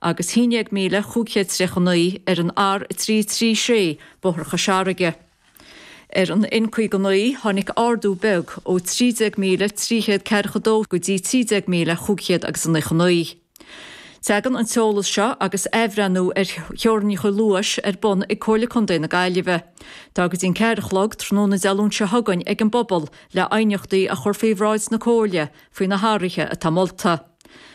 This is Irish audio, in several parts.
agus 11539 ar an R336, Bóthar Chois Fharraige. Ar an N59, tháinig ardú beag ó 13342 go dtí 13599. Teagann an t-eolas seo agus athbhreithniú ar theorainneacha luais ar bun ag Comhairle Contae na Gaillimhe. Tá go dtí a ceathair a chlog tráthnóna Dé Luain seo chugainn ag an bpobal le aighneachtaí a chur faoi bhráid na Comhairle faoi na hathruithe atá molta.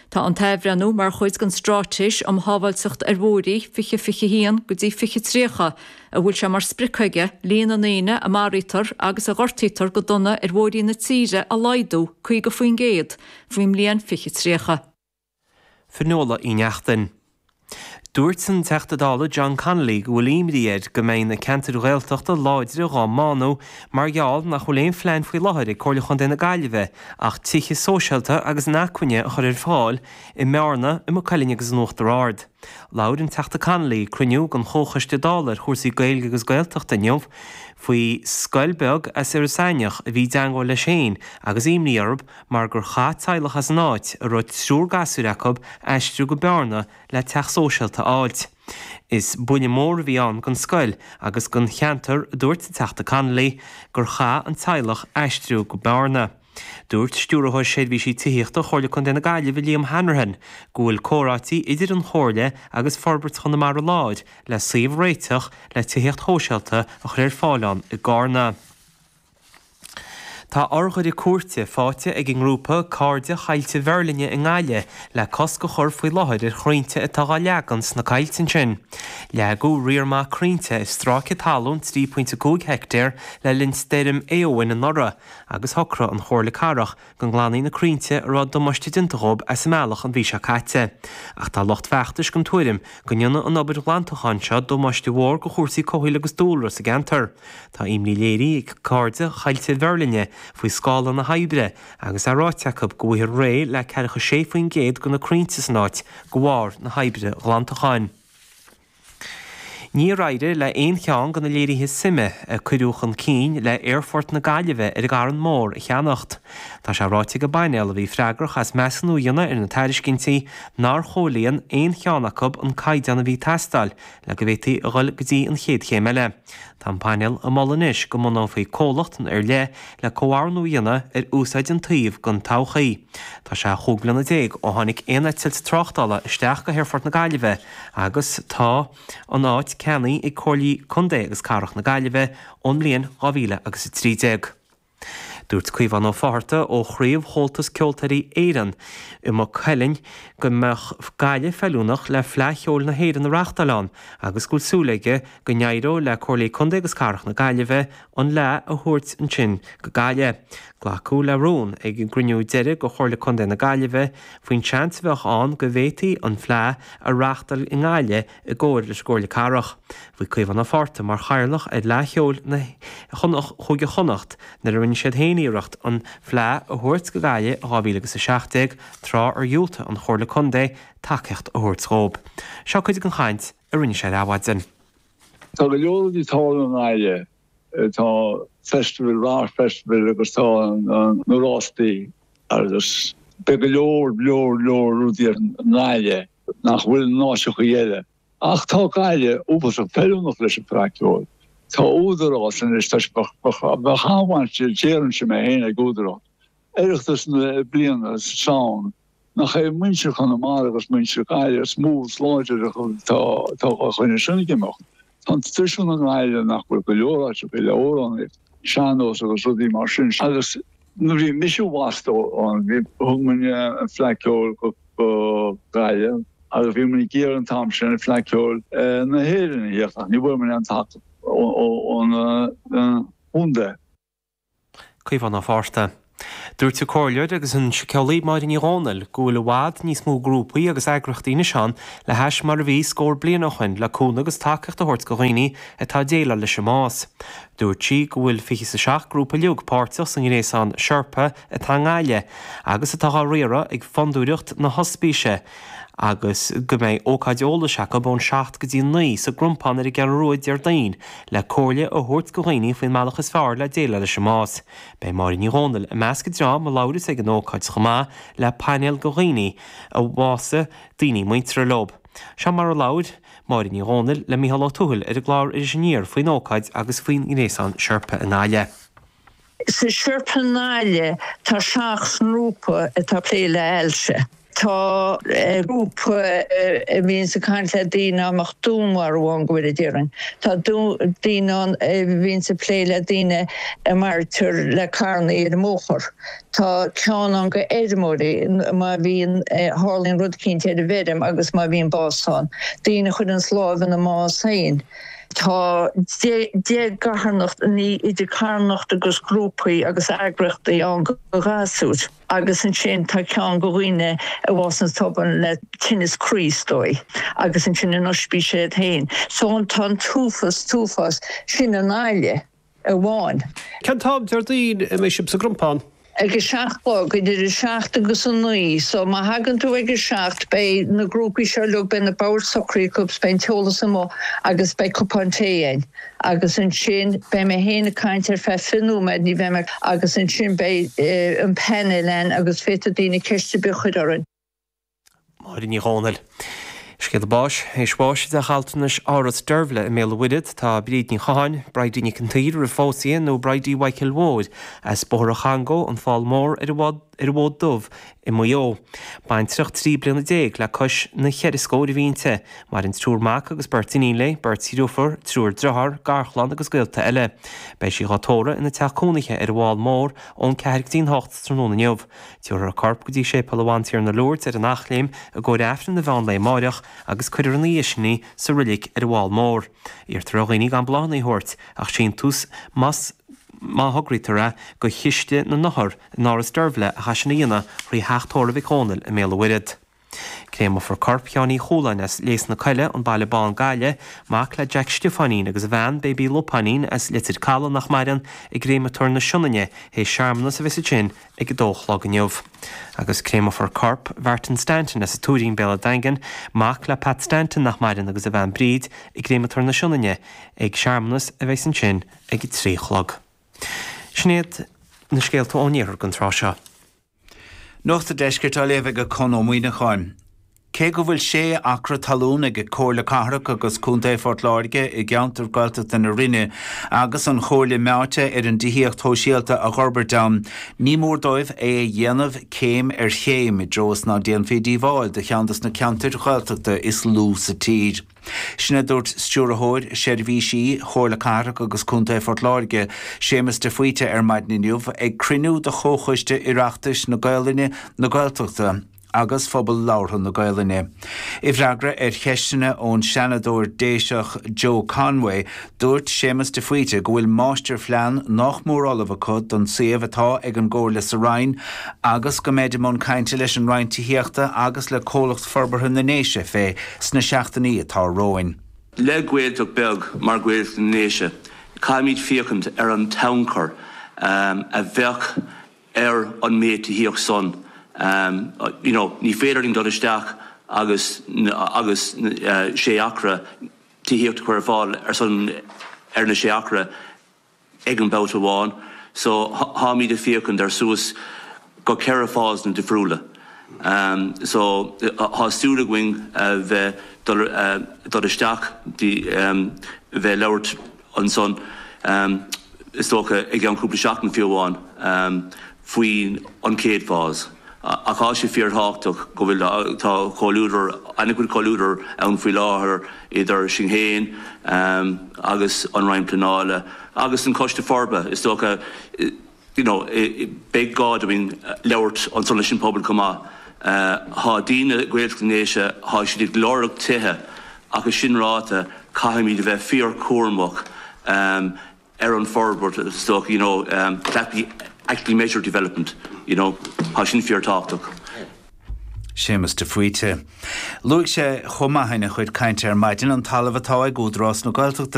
Tá an t-athbhreithniú mar chuid den Straitéis um Shábháilteacht ar Bhóithrí 2021 go dtí 2030, a bhfuil sé mar sprioc aige líon na ndaoine a mharaítear agus a ghortaítear go dona ar bhóithrí na tíre a laghdú 50% faoin mbliain 2030. Fionnuala Uí Neachtain. Dúirt an Teachta Dála John Connolly go bhfuil imní air go mbeidh na ceantair Ghaeltachta láidre dhá mbánú mar gheall nach bhfuil aon phlean faoi láthair ag Comhairle Chontae na Gaillimhe ach tithe sóisialta agus inacmhainne a chur ar fáil i mBearna, i Maigh Cuilinn agus in Uachtar Ard. Labhair an Teachta Connolly ag cruinniú den Chomhchoiste Dála ar chúrsaí Gaeilge agus Gaeltachta inniu faoi scoil beag as Iorras Aithneach a bhí i dteangmháil leis féin agus imní orthu mar gur chaith teaghlach as an áit, a raibh triúr gasúir acu, aistriú go Bearna le teach sóisialta a fháilt. Is buille mór a bhí ann don scoil agus don cheantar, a dúirt an Teachta Connolly, gur chaith an teaghlach aistriú go Bearna. Dúirt Stiúrthóir Seirbhísí Tithíochta Chomhairle Contae na Gaillimhe Liam Hanrahan go bhfuil comhráití idir an Chomhairle agus Forbairt Chonamara Láir le suíomh a réiteach le tithíocht shóisialta a chur ar fáil ann i gCarna. Tá urghaire cúirte faighte ag an ngrúpa Cairde Choillte Mheirlinne i nGaillimh le cosc a chur faoi láthair ar chrainnte atá á leagan sna coillte ansin. Leagadh riar maith crainnte ar stráice talún 3.5 heictéar le linn stoirm Éowyn anuraidh agus shocraigh an Chomhairle Cathrach go nglanfaí na crainnte a raibh damáiste déanta dhóibh as a mbealach an mhí seo caite, ach tá lucht feachtais den tuairim go ndéanfaidh an obair ghlantacháin seo damáiste mhór do chúrsaí comhshaoil agus dúlra sa gceantar. Tá imní léirithe ag Cairde Choillte Mheirlinne faoi scála na hoibre agus é ráite acu go bhfaighfear réidh le ceathracha sé faoin gcéad de na crainnte san áit de bharr na hoibre ghlantacháin. Níor éirigh le haon cheann de na léirithe suime a cuireadh chun cinn le hAerfort na Gaillimhe ar an gCarn Mór a cheannacht. Tá sé ráite ag an bpainéal a bhí freagrach as measúnú a dhéanamh ar na tairiscintí nár chomhlíon aon cheann acu an caighdeán a bhí ag teastáil le go bhféadfaí a dhul go dtí an chéad chéim eile. Tá an painéal ag moladh anois go mbunófaí comhlacht ar leith le comhordú a dhéanamh ar úsáid an tsuímh don todhchaí. Tá sé chúig bliana déag ó tháinig aon eitilt tráchtála isteach go haerfort na Gaillimhe agus tá an áit ceannaithe ag Comhairlí Contae agus Cathrach na Gaillimhe ón mbliain 2013. Dúirt Caomhán Ó Fátharta ó chraobh Chomhaltas Ceoltóirí Éireann i Maigh Cuilinn go mbeadh Gaillimh feiliúnach le Fleadh Cheoil na hÉireann a reáchtáil ann agus go bhfuil súil aige go n-éireoidh le Comhairlí Contae agus Cathrach na Gaillimhe an Fhleadh a thabhairt ansin go Gaillimh. Glacadh le rún ag an gcruinniú deiridh de Chomhairle Contae na Gaillimhe faoin seans a bheadh ann go bhféadfaí an Fleadh a reáchtáil i nGaillimh i gcomhar leis an gComhairle Cathrach. Bhí Caomhán Ó Fátharta mar chathaoirleach ar Fhleadh Cheoil na Cúige Chonnacht nuair a rinne siad féin iarracht an Fleadh a thabhairt go Gaillimh in 2017, tráth ar dhiúltaigh an Chomhairle Contae tacaíocht a thabhairt dhóibh. Seo cuid den chaint a rinne sé ar Adhmhaidin. Tá go leor rudaí togha i nGaillimh. Tá festival, arts festival agus tá na rástaí agus beidh go leor, leor, leor rudaí i nGaillimh nach bhfuil in áiteachaí eile. Ach tá Gaillimh uafásach feiliúnach leis an Fleadh Ceoil. Tá Údarás anois, tá sé, bheadh an-bhaint, déarfainnse mé féin, ag Údarás Oireachtas na bliana sa tSamhain. Nach é muintir Chonamara agus muintir Gaillimh is mó is láidre atá ag coinneáil sin ag imeacht. Tá an traidisiún i nGaillimh nach bhfuil go leor áiteachaí eile, amhráin sean-nós agus rudaí mar sin agus nuair a bhí mise bhocht ann bhí, thug muinn an Fleadh Ceoil go Gaillimh agus bhí muinn ag iarraidh an t-am sin Fleadh Ceoil na hÉireann a thíocht ach ní bhfuair muinn aon tacaíocht ón chontae. Caomhán Ó Fátharta. Dúirt an comhairleoir agus an síceolaí Máire Ní Dhomhnaill go bhfuil i bhfad níos mó grúpaí agus eagraíochtaí anois ann le hais mar a bhí scór bliain ó shin le cúnamh agus tacaíocht a thabhairt go dhaoine atá ag déileáil leis an mbás. Dúirt sí go bhfuil fiche is a seacht grúpa uilig páirteach sa ngréasán Sherpa atá i nGaillimh agus atá á riaradh ag Fondúireacht na hOspíse, agus go mbeidh ócáid eolais acu ón seacht go dtí naoi sa gCrompán ar an gCeathrú Rua Déardaoin le comhairle a thabhairt do dhaoine faoin mbealach is fearr le déileáil leis an mbás. Beidh Máire Ní Dhomhnaill i measc an dream a labhras ag an ócáid chomh maith le painéal de dhaoine a bhásaigh daoine muinteartha leo. Seo mar a labhair Máire Ní Dhomhnaill le Micheál Ó Tuathail ar an gclár Iris Aniar faoin ócáid agus faoin ngréasán Sherpa i nGaillimh. Sa Sherpa i nGaillimh tá seacht ngrúpa atá ag plé le hailse. Tá grúpa a bhíonns ag caint le daoine a mbeadh dúnmharú ann, go bhfóire Dia orainn. Tá daoine ann a bhíonns ag plé le daoine a mharaítear le carrannaí ar an mbóthar. Tá ceann ann go fheirmeoirí, má bhíonn, tharlaíonn rud éicínt ar an bhfeirm agus má bhíonn bás ann. Daoine a chuireanns láimh ina mbás féin. Tá deich gcarthanacht ní idir carthanacht agus grúpaí agus eagraíochtaí ann go ghasúir agus ansin tá ceann go dhaoine a bhásaíonn tobann le tinneas croí, is dóigh, agus ansin an ospís iad féin. So tá an t-uafás, t-uafás, sin i nGaillimh. amháin. Cén t-am Déardaoin a mbeidh sibh sa gCrompán? ag a seacht a chlog, idir a seacht agus a naoi so má thagann tú ag a seacht beidh na grúpaí seo uilig beidh na boird socraithe acu beidh an t-eolas amuigh agus beidh cupán tae a'inn agus ansin beidh mé féin ag caint ar feadh fiche nóiméad ní bheidh mé agus ansin beidh an panel a'inn agus féadfaidh daoine ceist ar bith a chuir orainn. Máire Ní Dhomhnaill. Scéala báis, théis bháis i dteach altranais Áras Deirbhle i mBéal an Mhuirthead tá Bríd Ní Chatháin, Bridie Nic an tSaoir, roimh phósadh di nó Bridie Mhichael Mhóir as Bóthar an Chongó, an Fál Mór, ar an bhFód Dubh i Maigh Eo. Baintreach trí bliana déag le cois na ceithre scóir a bhí inti. Maireann triúr mac agus beirt iníon léi, beirt dhriofúr, triúr driotháir, garchlann agus gaolta eile. Beidh sí dhá tórramh ina teach cónaithe ar an bhFál Mór ón ceathair go dtí an hocht tráthnóna inniu. Tiúrfar a corp go dtí Séipéal a Bhantiarna Lourdes ar an Eachléim i gcomhair Aifreann an mheán lae amáireach agus cuirfear ina dhiaidh sin í sa Roilic ar an bhFál Mór. Iarrtar ar dhaoine gan bláthanna a thabhairt ach síntiús más má thograítear é do Chiste na nOthar in Áras Deirbhle ach é sin a dhéanamh thrí Theach Tórraimh Mhic Dhónaill i mBéal an Mhuirthead. Créamófar corp Sheáin Uí Chualáin as Léas na Coille, An Baile Bán, Gaillimh, mac le Jack Stiofáinín agus a bhean, Baby Lupáinín, as Leitir Calaidh, nach maireann, i gCréamatóir na Sionainne théis searmanas a bheas ansin ag 2 a chlog inniu. Agus créamófar corp Mhartin Stanton as an Tuairín, Béal a' Daingin, mac le Pat Stanton nach maireann agus a bhean Bríd, i gCréamatóir na Sionainne ag searmanas a bheas ansin ag 3 a chlog. Sin iad na scéalta ón Iarthar don tráth seo. Nuacht an Deiscirt á léamh ag Conn Ó Muíneacháin. Cé go bhfuil sé acra talún ag Comhairle Cathrach agus Contae Phort Láirge i gceantar Gaeltachta na Rinne agus an Chomhairle meáite ar an dtithíocht shóisialta a dh'fhorbairt ann ní mór dóibh é a dhéanamh céim ar chéim i dtreo is ná déanfaí díobháil do cheann dos na ceantair Ghaeltachta is lú sa tír. Sin a dúirt Stiúrthóir Seirbhísí Chomhairle Cathrach agus Contae Phort Láirge, Séamus de Faoite ar maidin inniu ag cruinniú de Chomhchoiste Oireachtais na Gaolainne, na Gaeltachta agus Phobal Labhartha na Gaolainne. I bhfreagra ar cheisteanna ón Seanadóir Déiseach Joe Conway, Dúirt Séamus de Faoite go bhfuil máistirphlean nách mór ullamh acu don suíomh atá ag an gComhairle sa Rinn agus go mbeid i mbun cainte leis an Roinn Tithíochta agus le Comhlacht Forbartha na nDéise fé sna seachtainí atá romhainn. Le Gaeltacht beag mar Ghaeltacht na nDéise, caithfimid féachaint ar an tionchar a bheadh ar an méid tithíocht san, you know, ní féidir linn dul isteach agus 6 acra, tithíocht a chur ar fáil ar son ar na sé acra ag an babhta amháin. So tháimíd ag féachaint ar suas go ceithre phaseanna difriúla. So thá súil againn bheith dul isteach bheith ag labhairt. ansan, is dócha i gceann cúpla seachtain fiú amháin, faoi an chéad fás. Ach tá sé fíorthábhachtach go bhfuil, tá comhluadar, an-chuid comhluadar ann faoi láthair idir sinn féin agus an Roinn Pleanála agus an Coiste Forbartha. Is dócha. you know beidh gá dúinn labhairt ansan leis an pobal chomh maith tá daoine Gaeltacht na nDéise tá siad ag lorg tithe ach é sin ráite caithfimid a bheith fíorchúramach ehm ar an forbairt is dócha you know ehm that be actually measured development you know tá sin fíorthábhachtach. Séamus de Faoite. Luaigh sé chomh maith ina chuid cainte ar maidin an talamh atá ag Údarás na Gaeltachta